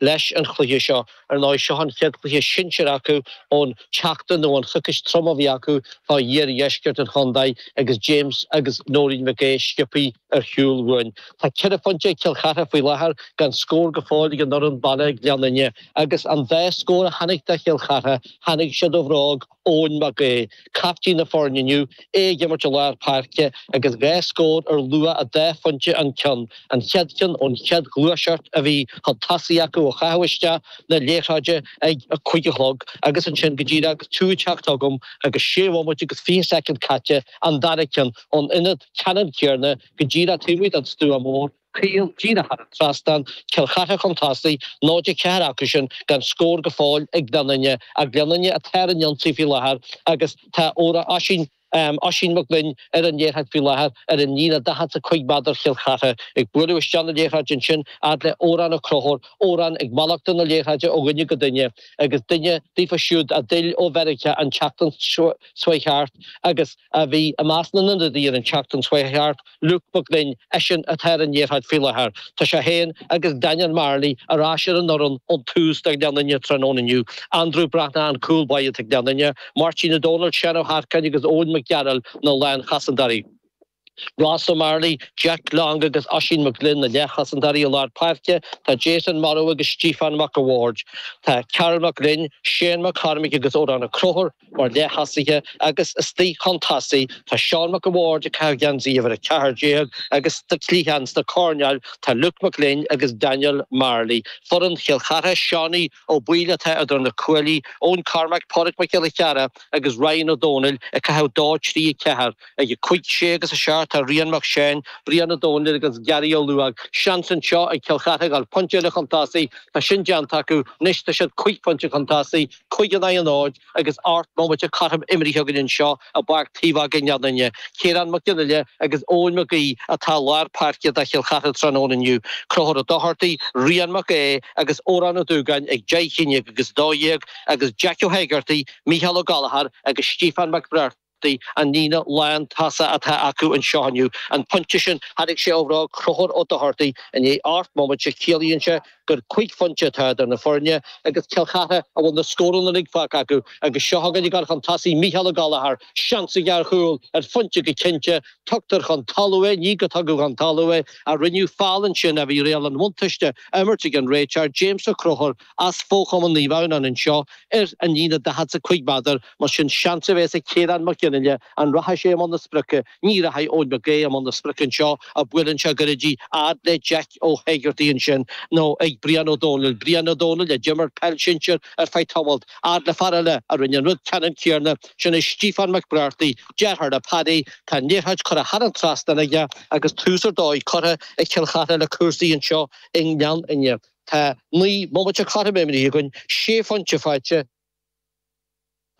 leis an chluiche seo. Ar ndóigh, seo an chéad chluiche sinsir acu ón tseachtain nó an choicís trom a bhí acu fá dh'iardheisceart an chontae agus James agus Nóirín Mhic Aodha sciobtha ar shiúl uainn. Tá ceithre phointe ag Cill Chartha faoi láthair gan scór go fóill ag an fhoireann baile Gleann Fhinne agus an dá scór a tháinig do Chill Chartha, tháinig siad ó bhróg. Eoin Mac Aodha, caiptín na foirne inniu, é ag imirt i lár páirce agus dhá scór ar luach dhá phointe an ceann, an chéad cheann ón chéad ghluaiseacht a bhí chun tosaigh acu ó chaitheadh isteach na liathróide ag a cúig a chlog agus ansin go díreach agus tú ag teacht chugam agus sé bhomaite agus fiche soicind caite, an dara ceann ón ionad ceannann céanna go díreach taobh amuigh den stua mór. caol díreach thar an trasnán, Cill Chartha chun tosaigh, 0-4 acusan gan scór go fóill ag Gleann Fhinne, ach Gleann Fhinne atá ar an ionsaí faoi láthair agus tá Ora Oisín, Oisín Mac Gloinn, ar an liathróid faoi láthair ar an líne 45 méadar Chill Chartha. Ag bualadh isteach na liathróide ansin fhad le Odhrán Ó Conchúir, Odhrán ag malartú na liathróide ó dhuine go duine agus duine daofa siúd a d'fhill ó Mheiriceá an tseachtain seo thart agus a bhí i measc na n-ionadaithe ar an tseachtain seo thart, Luke McGlynn, eisean atá ar an liathróid faoi láthair. Tá sé féin agus Daniel Marley ar ais ar an fhoireann ón tús do Ghleann Fhinne tráthnóna inniu, Andrew Breathnach an cúl báire do Ghleann Fhinne, Máirtín Ó Dónaill, Seán Ó hEarcáin agus Eoin Mac Gearailt na lánchosantóirí. Ross Marley, Jack Long agus Oisín McGlynn na leathchosantóirí i lár páirce, tá Jason Morrow agus Stiofán Mac a' Bhaird, tá Karl McGlynn, Shane McCormick agus Odhrán Ó Conchúir, Mar leath-thosaithe agus istigh chun tosaigh tá Seán Mac an Bhaird ag caitheamh geansaí uimhir 14 agus sna cliatháin sna coirnéil tá Luke McGlynn agus Daniel Marley. Foireann Chill Chartha, Seánie Ó Baoill atá idir na cuaillí, Eoin Cormack, Páraic Mac Giolla Chearra agus Ryan Ó Dónaill ag caitheamh dó trí a ceathair. Ag a cúig, sé agus a seacht tá Rian Mac Seáin, Brian Ó Dónaill agus Gary Ó Luóg. Seans anseo ag Cill Chartha a ghabháil pointe eile chun tosaigh. Tá sin déanta acu anois tá siad cúig phointe chun tosaigh. Cúig in aghaidh a náid agus ocht mbomaite go cothrom imeartha againn anseo i bPáirc Taobhóige i nGleann Fhinne, Ciarán Mag Fhionnaile agus Eoin Mac Aodha atá i lár páirce do Chill Chartha tráthnóna inniu, Conchúr Ó Dochartaigh, Rian Mac Aodha agus Odhrán Ó Dúgáin ag deich, aon déag agus a dó dhéag agus Jack Ó hÉigeartaigh, Micheál Ó Gallachóir agus Stiofán Mac Briart. An líne lántosaigh atá acu anseo inniu an pointe sin. Tháinig sé ó bhróg Chonchúir Ó Dochartaigh i ndiaidh ocht mbomaite. Ciallaíonn sé gur cúig phointe atá idir na foirne agus Cill Chartha a bhfuil na scóranna uilig faighte acu agus seo chugainn ag gabháil chun tosaigh Micheál Ó Gallachóir, seans aige ar chúl, ar phointe go cinnte, tugtar chun talaimh é, nó gur tugadh chun talaimh é, a rinneadh feall ansin ach bhí riail an bhuntáiste á imirt ag an réiteoir, James Ó Conchúir, as fo-chumann Naomh Adhamhnáin anseo ar an líne 45 méadar, mar sin seans a bhéas ag Ciarán Mac Gionaille an rachaidh sé i mbun na sprice, ní rachaidh Eoin Mag Aoidh i mbun na sprice anseo, buaileann sé go gairid í fhad le Jeaic Ó hÉigeartaigh ansin, nó ag Brian Ó Dónaill, Brian Ó Dónaill a d'imir peil sinsear ar feadh tamalt, fhad le fear eile a rinne an rud ceannann céarna, sin é Stíofán Mac Breartaí, deartháir le Paddy, tá an liathróid curtha thar an trasnán aige agus tús ar dóigh curtha ag Cill Chartha le cúrsaí anseo i nGleann Fhinne. Tá naoi mbomaite cothrom imrithe againn, sé phointe faighte ag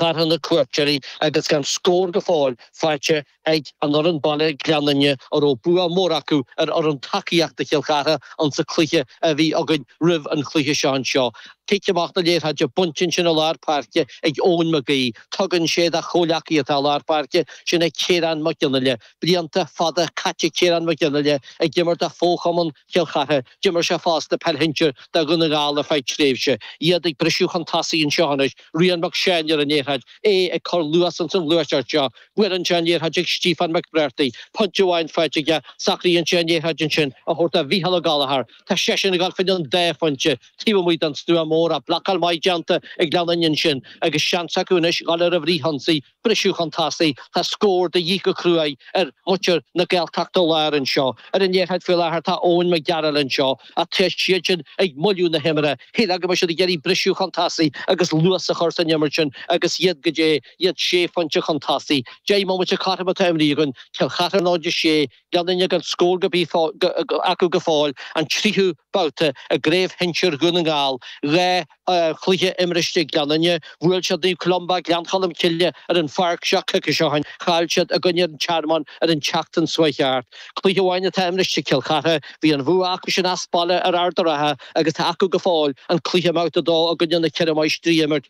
Cill Chartha na cuairteoirí agus gan scór go fóill faighte ag an fhoireann baile Gleann Fhinne a raibh bua mór acu ar fhoireann tacaíochta Chill Chartha insa chluiche a bhí againn roimh an chluiche seo anseo. Cic amach an liathróid bainte ansin i lár páirce ag Eoin Mag Aoidh. Tugann sé dá chomhleacaí atá i lár páirce, sin é Ciarán Mac Gionaille. Blianta fada caite ag Ciarán Mac Gionaille ag imirt do fho-chumann Chill Chartha. D'imir sé fosta peil shinsir do Dhún na nGall ar feadh tréimhse, iad ag briseadh chun tosaigh anseo anois, Rian Mac Seáin ar an liathróid, é ag cur luas ins an ghluaiseacht seo, buaileann sé an liathróid chuig Stíofán McBrearty, pointe amháin faighte aige, socraíonn sé an liathróid ansin a thabhairt do Mhícheál Ó Gallachóir, tá seisean ag dul faoi dhéin dá phointe, taobh amuigh don stua móra, blocáil maith déanta ag Gleann Fhinne ansin agus seans acu anois dhul ar an bhfrithionsaí. briseadh chun tosaigh, tá scór de dhíth go cruaidh ar mhuintir na Gaeltachta Láir anseo. Ar an liathróid faoi láthair tá Eoin Mac Gearailt anseo ach tá siad sin ag moilliú na himeartha. Shílfeá go mbeadh siad ag iarraidh briseadh chun tosaigh agus luas a chur san imirt sin agus iad, goidé iad sé phointe chun tosaigh. Deich mbomaite cothrom atá imrithe againn, Cill Chartha 0-6, Gleann Fhinne gan scór ar bith acu go fóill, an tríú babhta i gcraobh shinsir Dhún na nGall, dhá chluiche imrithe ag Gleann Fhinne, bhuail siad Naomh Columba, Gleann Cholm Cille, ar an pháirc seo coicís ó shin. Chaill siad i gcoinne an Tearmann ar an tseachtain seo a chuaigh thart. Cluiche amháin atá imrithe ag Cill Chartha. Bhí an bhua acu sin as baile ar Ard a' Rátha agus tá acu go fóill an cluiche i mbabhta a dó i gcoinne na Ceithre Máistrí a imirt.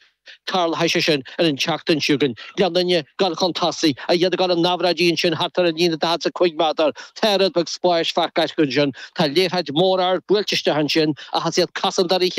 Tarlóidh sé sin ar an tseachtain seo chugainn. Gleann Fhinne ag dul chun tosaigh, ach iad ag dul in aimhréidí ansin thart ar an líne 45 méadar. Tá rud beag spáis faighte acu ansin. Tá liathróid mhór ard buailte isteach ansin ach is iad cosantóirí